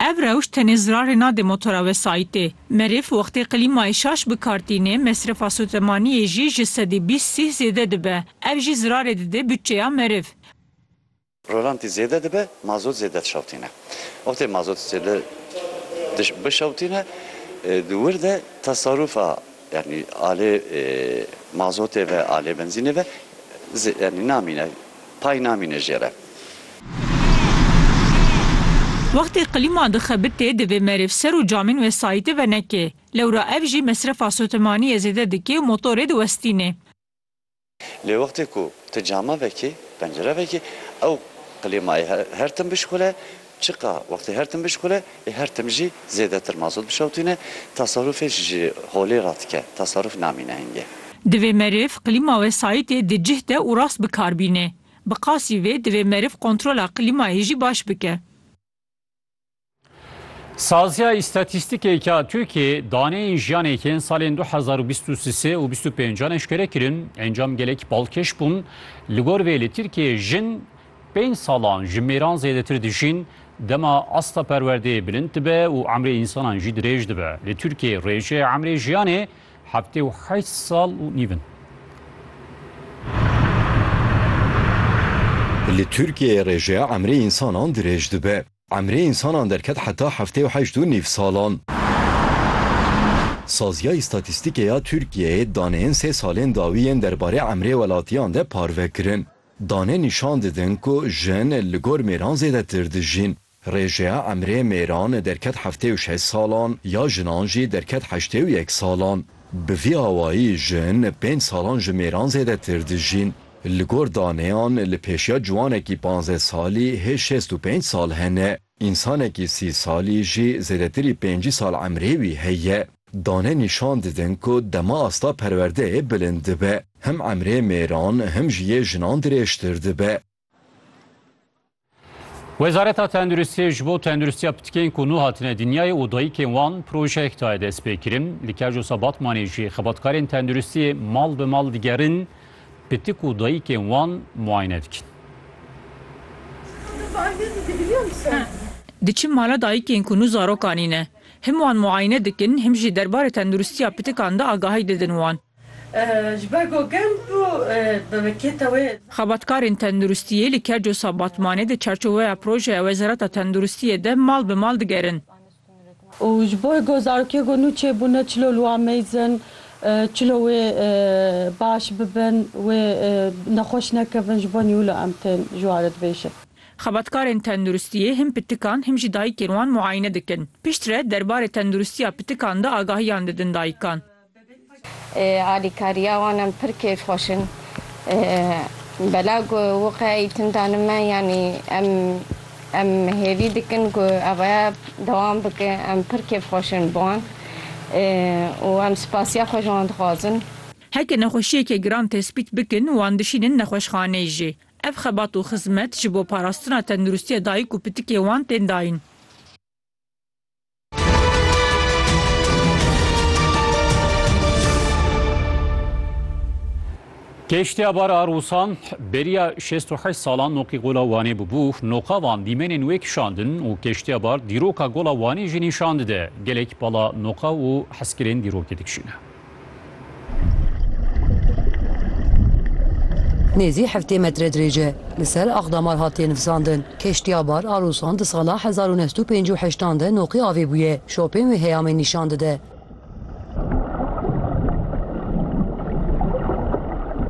Ev rewş tenê zirarê nade motora wesayîtê. Meriv wextê klîmayê şaş bi kar tîne, mesrefa sotemaniyê jî ji sedî bîst sîh zêde dibe. Ev jî zirarê dide bütçeya meriv. Rolantî zêde dibe, mazot zêde dişewtîne. Wextê mazot zêde bişewtîne, di wir de tasarûfa Yanî alê mazotê ve, alê benzînê ve yanî namîne, pay namîne jê re. Wextê qilîma dixebitê divê merêv ser û camên wesayîtê venekê. Lewra ev jî mesrefa sotemaniyê zêde dikê û motorê diwestînê. Lê wextê ku tu cama vekî, pencere vekî, ew klîmayê her tim bişixule, çiqa wextê her tim bişixule, ê her tim jî zêdetir mazot bişewitîne, tasarûfê ji holê re dike, tasarûf namîne hingê. Divê meriv klîma wesayîtê di cih de û rast bi kar bîne. Bi qasî vê divê meriv kontrola klîmayê jî baş bike. Saziya îstatîstîkêka Tirkiyê daneyên jiyanê yên salên 2023 û 25 eşkere kirin, encam gelek balkêş bûn. Li gor vê li Tirkiyê jin pênc salan ji mêran zêdetir dijîn, dema asta perwerdeyê bilind dibe û emrê însanan jî dirêj dibe. Li Tirkiyê rêjeya emrê jiyanê heftê û heşt sal û nîv in. Li Tirkiyê rêjeya emrê însanan dirêj dibe. Emrê însanan derket heta heftê û heşt û nîv salan. Saziya Îstatîstîkê ya Tirkiyeyê daneyên sê salên dawî yên derbarê emrê welatiyan de parve kirin. Dane nîşan didin ku jin li gor mêran zêdetir dijîn. Rêjeya emrê mêran derket heftê û şeş salan, ya jinan jî derket heştê û yek salan. Bi vî awayî jin pênc salan ji mêran zêdetir dijîn. Li gor daneyan li pêşiya ciwanekî panzdeh salî hê şêst û pênc sal hene, însanekî sî salî jî zêdetirî pêncî sal emrê wî heye. Dane nîşan didin ku dema asta perwerdeyê bilind dibe, him emrê mêran him jî yê jinan dirêjtir dibe. Wezareta Tenduristiyê ji bo tenduristiya pitikên ku nû hatine dinyayê û dayikên wan projeyek daye destpêkirin. Li Kerjosa Batmanê jî xebatkarên tenduristiyê mal bi mal digerin pitik û dayikên wan muayene dikin. Diçin mala dayikên ku nû zarokanî ne. Him wan muayene dikin him jî derbarê tenduristiya pitikan de agahî didin wan. Ji ber ku gel bû bi wekêta wê. Xebatkarên tenduristiyê li Kercosa Batmanê di çarçoweya projeya Wezareta Tenduristiyê de mal bi mal digerin. Û ji bo ku zarokê ku nû çêbûne çilo li wan mêzin, çilo wê baş bibin, wê nexweş nekevin ji bo nî wilo em tên ji wan re dibêjin. Xebatkarên tenduristiyê him pitikan him jî dayikên wan muayine dikin. Piştre derbarê tenduristiya pitikan de agahiyan didin dayikan. Alîkariya wan em pir kêfxweş in. Belav ku wiqe îtim dane me yanî em em hêvî dikin ku ev rêya dewam bike. Em pir kêfxweş in bi wan û em spasiya xwe ji wan dixwazin. Heke nexweşiyeke giran tespît bikin, wan dişînin nexweşxaneyê jî. Ev xebat û xizmet ji bo parastina tenduristiya dayik û pitikê wan tên dayîn. Keştiya bar a Rûsan beriya şêst û heşt salan noqî gola Wanê bûbû. Noqa van dîmenên wê kişandin û keştiya bar dîroka gola Wanê jî nîşan dide. Gelek pala noqa û heskirên dîrokê dikişîne. Nêzî heftê metre dirêj e. Li ser axdamar hatiye nifisandin. Keştiya bar a Rûsan di sala hezar û neh sed û pêncî û heşt an de noqî avê bûye. Şopên wê heyamê nîşan dide.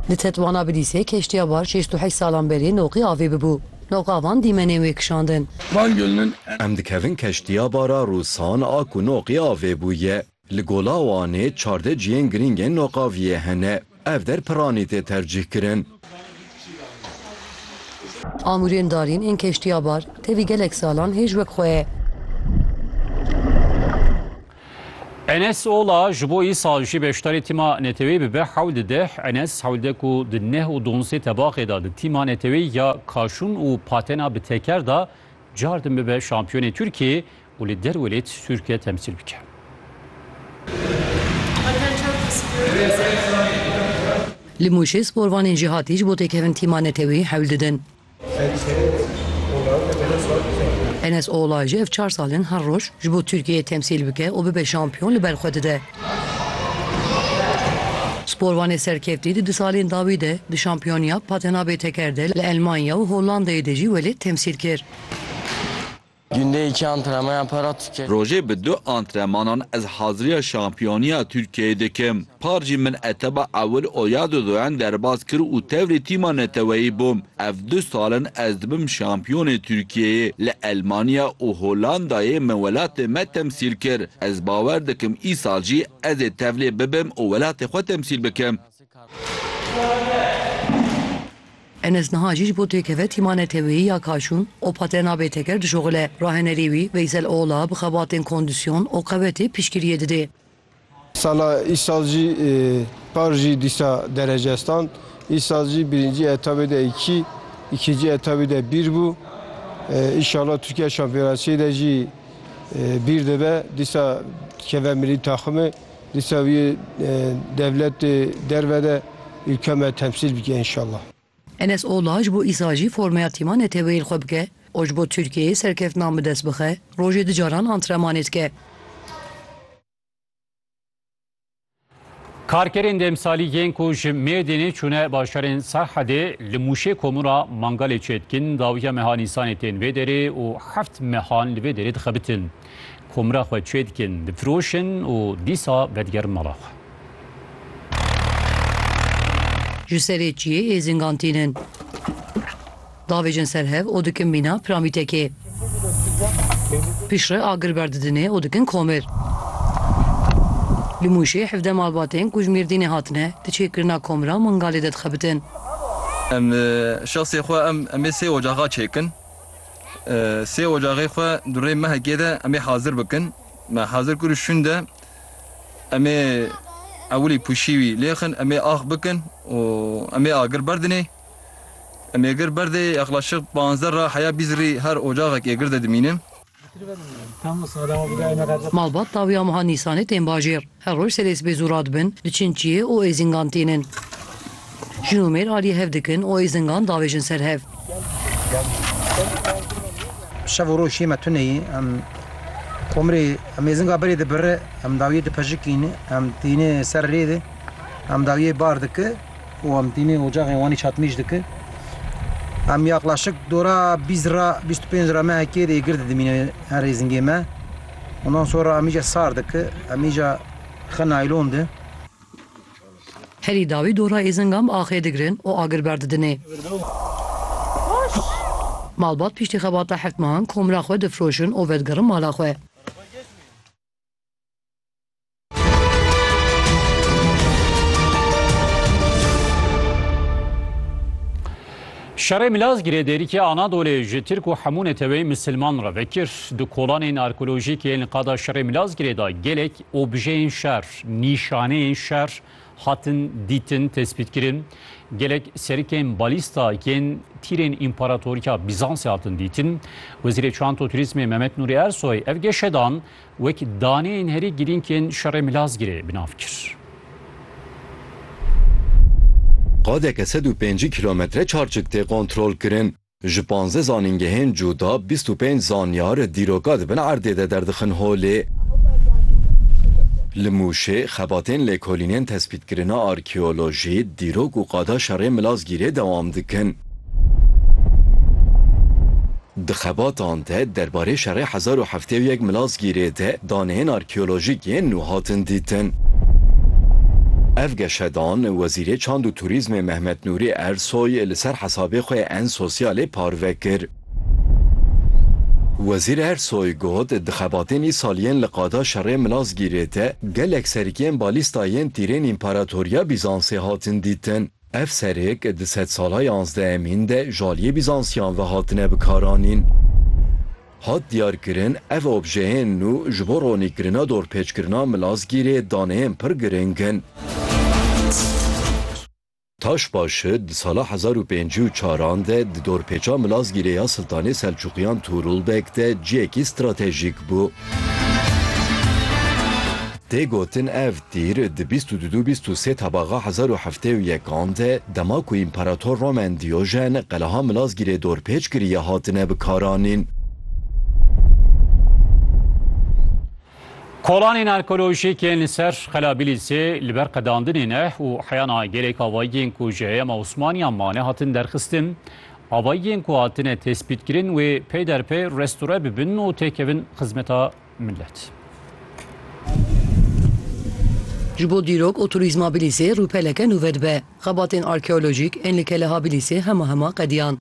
Di Tetwana Bilîsê keştiya bar şêst û heşt salan berê noqî avê bibû. Noqa van dîmenên wê kişandin. Em dikevin keştiya bar a Rûsan a ku noqî avê bûye. Li Gola Wanê çardeh cihên girîng ên noqaviyê hene. Ev der piranî tê tercîh kirin. Amûrên darîn ên keştiya bar tevî gelek salan hêj wek xwe ye. Enes Ola ji bo îsal jî beşdarî tîma neteweyî bibe hewld deh. Enes hewldeh ku di neh û duanzdeh tebaxê de di tîma neteweyî ya kaşûn û patena bi teker de cardin bibe şampiyonê Tirkiyeyê û li derwê lê tişt Tirkiye temsîl bike. Li Mûşê sporvanên jêhatî ji bo têkevin tîma neteweyî hewl didin. Enes Ola ji ev çar sal in her roj ji bo Tirkiyeyê temsîl bike û bibe şampiyon li ber xwe dide. Sporvanê serkeftî di du salên dawî de di şampiyoniya patena bê teker de li Elmanya û Hollandayê de jî welêt temsîl kir. Günde iki antrenman yaparak Türkiye. Rojê bi du antremanan ez haziriya şampiyoniya Tirkiyeyê dikim. Par jî min etaba ewil Oyado Doen derbas kir û tevrê tîma neteweyî bûm. Ev du sal in ez dibim şampiyonê Tirkiyeyê. Li Elmanya û Hollandayê min welatê me temsîl kir. Ez bawer dikim îsal jî ez ê tevlê bibim û welatê xwe temsîl bikim. Enes niha jî ji bo têkeve tîma neteweyî ya Kaşûn û Patena Bêteker dişuxile. Rahenerî wî Veysel Oğla bi xebatên kondîsyon û qewetê piştgiriyê dide. Sala îsal jî par jî dîsa derece stand. Îsal jî birincî etabê de îkî, îkincî etabê de bîr bû. Înşallah Tirkiye Şampiyonasiyê de jî bîr dibe. Dîsa dikeve milî taximê. Dîsa wî dewletê derve de îlka me temsîl bike înşallah. Enes Ola ji bo îsal jî formeya tîma neteweyên xwe bike û ji bo Tirkiyeyê serkeftinan bi dest bixe, rojê du caran antremanê dike. Karkerên demsalî yên ku ji Mêrdînê çûne bajarên Serhedê li Mûşê komûna Mangalê çêdikin dawiya meha Nîsanê tên vê derê û heft mehan li vê derê dixebitin. Komra xwe çê dikin, difiroşin û dîsa vedigerin mala xwe. Ji serê çiyê êzingan tînin. Davêjin ser hev û dikin mîna piramîtekê. Piştre agir berdidinê û dikin komir. Li Mûşê hevdeh malbatên ku ji Mêrdînê hatine, di çêkirina komra Mingalê de dixebitin. Em şexsê xwe em em ê sê ocaxa çêkin. Sê ocaxê xwe di rê mehekê de em ê hazir bikin. Me hazir kir û şûnde em ê ewilî pûşî wî lêxin, em ê ax bikin û em ê agir berdinê. Em ê gir berdê yexlaşik panzdeh ra heya bîst rî her ocaxek ê gir de dimînin. Malbat dawî ya meha Nîsanê tên bajêr. Her roj serê sibê zû radibin, diçin çiyê û êzingan tînin. Jin û mêr aliyê hev dikin û êzingan davêjin ser hev. Şev û roj şiyê me tune yê. Komirê êzinga berê dibirri, dawiyê dipejikîne, tîne ser rê de, dawiyê bar dike û tîne ocaxê Wanê çatmîj dike. Yaqlaşik dora bîst ra, bîst û pênc ra me hekê de yê gir didimîne her êzingê me. Ondan sonra amice sardı ki amica xı naylondı. Herî dawî dora êzingam axê digirin û agir berdidinê. Malbat pîştî xebata heft mehan komra xwe difroşin û vedigirin mala xwe. Şerê Milazgirê dêrîkê Anadolê ji Tirk û hemû neteweyên misilman re vekir. Di kolanên arkeolojîk yên li qada Şerê Milazgirê de gelek objeyên şer, nîşaneyên şer hatin dîtin, tespîtkirin. Gelek serikên balîsta yên tîrên împaratoriya Bîzansê hatin dîtin. Wezîrê Çanto Turîzmê Mehmet Nûrî Ersoy ev geşedan Wek daneyên herî girîng yên şerê Milazgirê bi nav kir. Qadeke sed û pêncî kîlometre çarçik tê kontrolkirin. Ji panzdeh zanîngehên cuda bîst û pênc zanyar dîroka di bin erdê de derdixin holê. Li Mûşê xebatên lêkolînên tespîtkirina arkeolojî, dîrok û qada şerê Milazgirê dewam dikin. Di xebatan de derbarê şerê hezar û heftê û yek Milasgîrê de daneyên arkeolojîk yên nû hatin dîtin. Ev geşedan Wezîrê Çand û Turîzmê Mehmet Nûrî Ersoy li ser hesabê xwe yê en sosyalê parve kir. Wezîr Ersoy got, Di xebatên îsal yên li qada şerê Milasgîrê de gelek serikiyên balîsta yên tîrên Împaratoriya Bîzansê hatin dîtin. Ev serêk di sedsala yanzdehemîn de ji aliyê Bîzansiyan ve hatine bikaranîn. Hat diyarkirin ev objeyên nû ji bo ronîkirina dorpêçkirina Milazgîrê daneyên pir giring in. Taşbaşı di sala hezar û pêncî û çar an de di dorpêça Milazgîrê ya Siltanê Selçuqiyan Tuğrul Beg de ciyekî stratejîk bû. Tê gotin ev tîr di bîst û du dû bîst û sê tabaxa hezar û heftê û yek an de dema ku Împarator Romen Dîojen qeleha Milazgîrê dorpêç kiriye hatine bikaranîn. Kolanên arkeolojîk ên li ser Qela Bîlîsê li ber qedandinê ne û heyana gelek avayiyên ku ji heyema Osmaniyan mane hatin derxistin. Avayiyên ku hatine tespîtkirin wê pey derpey restore bibin û têkevin xizmeta Millet. Ji bo dîrok û turîzma Bilîsê rûpeleke nû vedibe. Xebatên arkeolojîk ên li Keleha Bilîsê hema hema qediyan.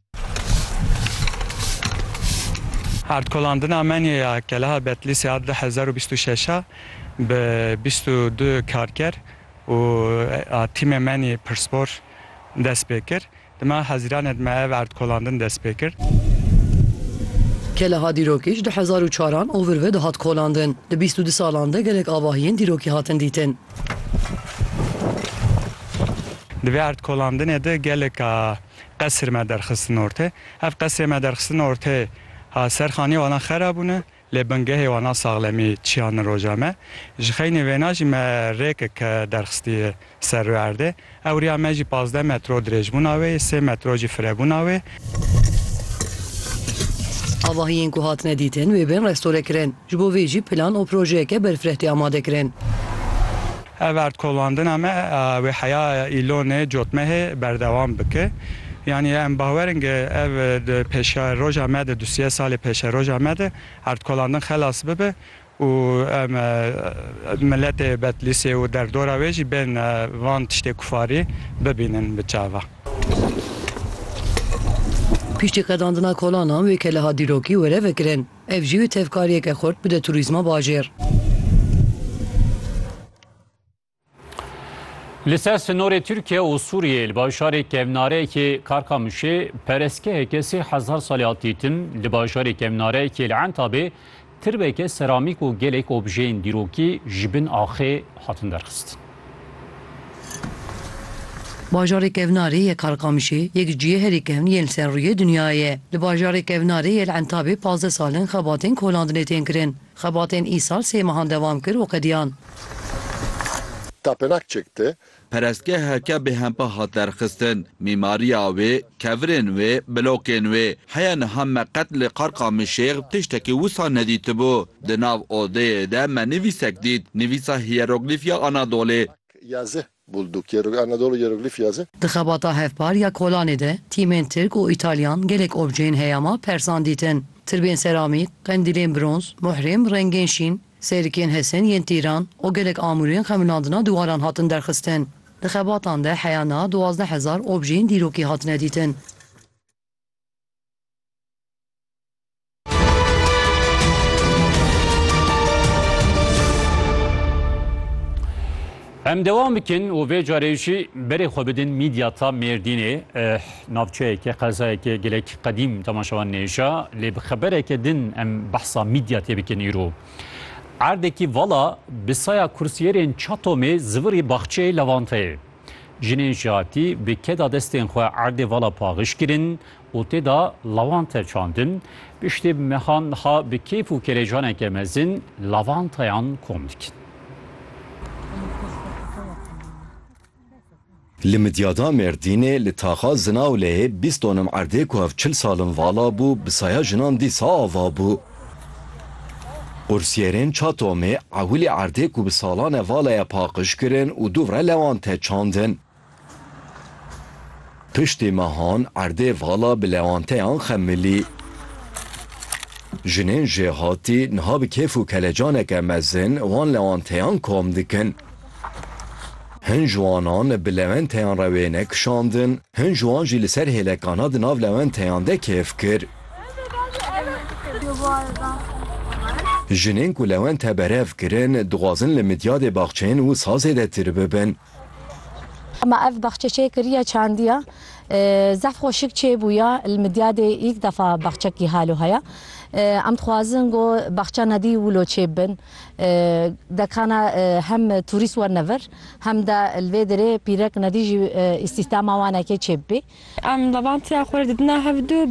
Erdkolandina menyê ya Keleha Betlîsê a du hezar û bîst û şeş a bi bîst û du karker û a tîmê menyê pirsbor dest pê kir. Dima Hezîranê de me ev erdkolandin dest pê kir. Keleha dîrokî ji du hezar û çar an ovir ve dihat kolandin. Di bîst û du salan de gelek avahiyên dîrokî hatin dîtin. Di vê erdkolandinê de geleka qesir me derxistin ortê. Ev qesirê me derxistin ortê ha ser xanîya wan a xera bûne. Lê bingehê wan a saxlemî çiyan in roja me. Ji xeynê wêna jî me rêkik derxistiye ser rû erdê. Ewriya me jî pazdeh metro dirêjbûna wê ye, sê metro jî firebûna wê. Avahiyên ku hatine dîtin wê bên restore kirin. Ji bo vê jî plan û projeyeke berfireh tê amadekirin. Ev erdkolandina me a wê heya Îlonê Cotmehê berdewam bike. Yanî em bawer in ke ev di pêşeroja me de, du sê salê pêşeroja me de erdkolandin xelas bibe û em miletê Betlîsê û derdora wê jî bên van tiştê kufarî bibînin bi çava. Piştî qedandina kolanan wê ke li hat dîrokî were vekirin. Ev jî tevkariyeke xurt bide turîzma bajêr. Li ser sinorê Tirkiye û Sûriyeyê li bajarê kevnareyekê Karkamişê perestgeheke sê hezar salî hat dîtin, li bajarê kevnareyekê li Entabê tirbeke seramîk û gelek objeyên dîrokî ji bin axê hatin derxistin. Bajarê kevnarê yê Karkamişê yek ji yê herî kevn yên li ser rûyê dinyayê ye. Li bajarê kevnarê yê li Entabê pazdeh sal in xebatên kolandinê tên kirin. Xebatên îsal sê mehan dewam kir û qediyan. Tapênak çekti. Perestgeheke bêhempa hat derxistin. Mîmariya wê, kevirên wê, blokên wê, heya niha me qet li Karkamişê tiştekî wisa nedîtibû. Di nav odeyê de me nivîsek dît, nivîsa hîyeroglîf ya Anadolê. Yazı bulduk, Hieroglif, Anadolu Hieroglif Yazı. Di xebata hevpar ya Kolanê de tîmên Tirk û Îtalyan gelek objeyên heyama persan dîtin, tirbên seramîk, qendîlên bronz, muhrîm, rengên şîn, sêrikên hesin yên tîran û gelek amûrên xeminandina diwaran hatin derxistin. Di xebatan de heya niha duwazdeh hezar objeyên dîrokî hatine dîtin. Em devam bikin û vê carê jî berê xwe bidin mîdyata Mêrdînê navçeyeke qezayeke gelek qedîm temaşewan nêja lê bi xebereke din em behsa mîdya tê bikin îro. Erdekî vala bi saya kursiyerên çatomê zivirî baxçeyê levanteyê. Jinên ji hatî bi keda destên xwe erdê vala paxiş kirin û tê de lavante çandin, piştî mehan niha bi kêf û kelecaneke mezin lavanteyan kom dikin. Li Midyada Mêrdînê li taxa Zinawleyê bîst donim erdê ku hev çil sal in vala bû bi saya jinan dîsa ava bû. Qursiyerên Çatomê ewilî erdê ku bi salan e vala ye paqij kirin û dûvre lewante çandin. Piştî mehan erdê vala bi lewanteyan xemilî. Jinên jêhatî niha bi kêf û kelecaneke mezin wan lewanteyan kom dikin. Hin ji wanan bi lewenteyan re wêne kişandin, hin ji wan jî li ser hêlekana di nav lewenteyan de kêf kir. Jinên ku lewente berev kirin, dixwazin li midyadê baxçeyên û sazê de tir bibin. Hema ev baxçe çê kiriya çandiya zehf xweşik çê bûya li Midyadê ilk defa baxçekî halo heye. Em dixwazin ku baxça nedî wilo çê bin. Dekana hem turîst werne vir hem de li vê derê pîrek nedî jî îstîhdama wan eke çê bibê. Em levandtiya xwe re didina hev du.